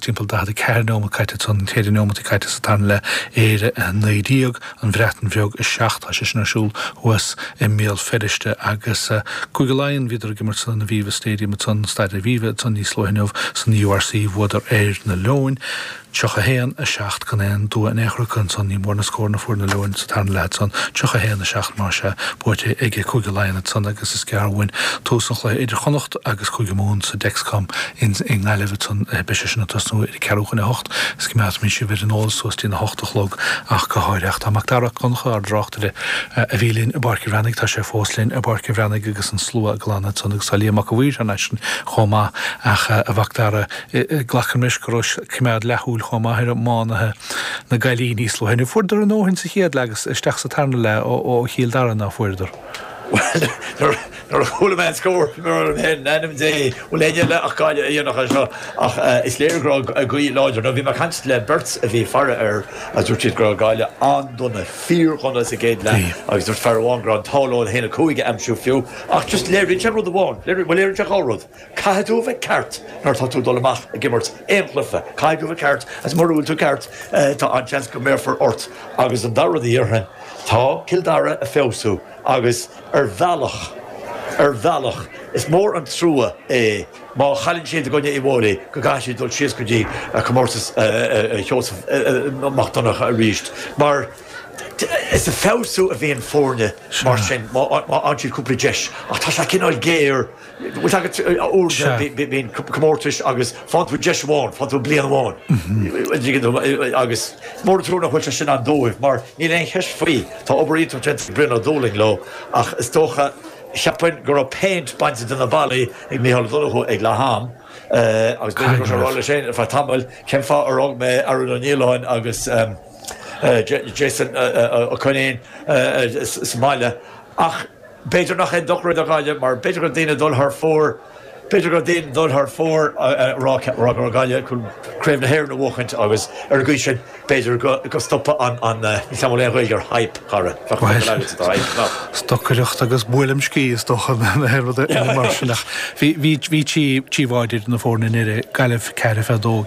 timpeall 44 neomat caite agus an chéad neomat caite sa tarna leath, Éire 19, An Bhreatain Bheag 7. Tá sé sin ar siúl thuas i mBéal Feirste agus Cúige Laighean, bhíodar ag imirt san Aviva Stadium agus an Staid Aviva níos luaithe inniu san URC, bhuadar ar na Leoin 31, 7. Gan aon dua in aon chor acu agus ní mór na scóranna a fuair na Leoin sa tarna leath agus 31, 7 más ea, buaite ag Cúige Laighean agus is gearr uainn tús an chluiche idir Chonnacht agus Cúige Mumhan sa Dexcom. Ansin i nGaillimh agus beidh sé sin ag tosnú ar a ceathrú chun a hocht, is coimeádfaimid sibh ar an eolas suas dtí na hocht a chlog ach go háirithe. Ach tá Macdara Mac Donncha, ár dtráchtaire, a bhí linn i bPáirc a' Bhreathnaigh, tá sé fós linn i bPáirc a' Bhreathnaigh agus an slua ag glanadh ansan agus tá Liam Mac a' Mhaoir thar n-ais ansin chomh maith. Ach a Mhacdara, glacaim leis go raibh coimeád leathúil chomh maith ar iománaithe na Gaillimhe níos luaithe. Fuaireadar a ndóthain sa chéad leath agus isteach sa tarna leath ó Chill Dara, ná fuaireadar? Bhuel, Nuair a chuala mé an scór, bhí mé ag rá liom féin, in ainm Dé, bhfuil éinne eile ach Gaillimh a dhéanfadh é seo? Ach is léir go raibh gaoth láidir. Nó bhí mé ag caint le beirt a bhí ag faire air agus dúirt siad go raibh Gaillimh an-dona, fíor-dhona sa gcéad leath agus dúirt fear amháin go raibh an t-ádh leo an 1-5 a aimsiú fiú. Ach just léiríonn sé rud amháin, léiríonn, bhuel léiríonn sé dhá rud. Caithfidh tú a bheith ceart nuair atá tú ag dul amach ag imirt aon chluiche. Caithfidh tú a bheith ceart agus mura bhfuil tú ceart, tá an-seans go mbéarfar ort. Agus an dara rud a dhéarfainn, tá Cill Dara ag feabhsú agus, Ar bhealach, ar bhealach, is mór an trua é má chailleann siad i gcoinne Uíbh Fhailí go gcaithfidh siad dul síos go dtí comórtas Sheosamh Mac Donncha arís, mar is ag feabhsú a bhíonn foirne mar sin má fhaigheann siad cúpla deis, ach tá sé cineál géar. Bhfuil a fhios agat úrscéal, bíonn comórtais agus faigheann tú deis amháin, faigheann tú bliain amháin agus is mór an trua nach bhfuil sé sin ann dóibh mar níl aon cheist faoi, tá obair iontach déanta ag Brian Ó Dúlaing leo ach is dócha, cheapfainn, go raibh péint bainte de na ballaí ag Micheál Ó Donnchú ag leath am agus b'fhéidir go raibh sé ag rá leis féin ar feadh tamaill cén fáth ar fhág mé Aaron Ó Nialláin agus Jason Ó Coinín sa mbaile ach B'fhéidir nach aon dochar é do Ghaillimh mar b'fhéidir go raibh daoine ag dul thar fóir, b'fhéidir go raibh daoine ag dul thar fóir a rá go raibh Gaillimh chun Craobh na hÉireann a bhuachaint agus ar an gcaoi sin b'fhéidir go stopfadh an, an, níl a fhios agam an bhfuil aon Ghaeilge ar hype, a Chárthaigh, bheadh an focal agatsa do hype, nach. Stocaireacht agus buaileam sciath is dócha nó aon rud mar sin ach bhí, bhí, bhí tí, trí bháide idir na foirne i ndeireadh, Gaillimh ceathair fiche dó,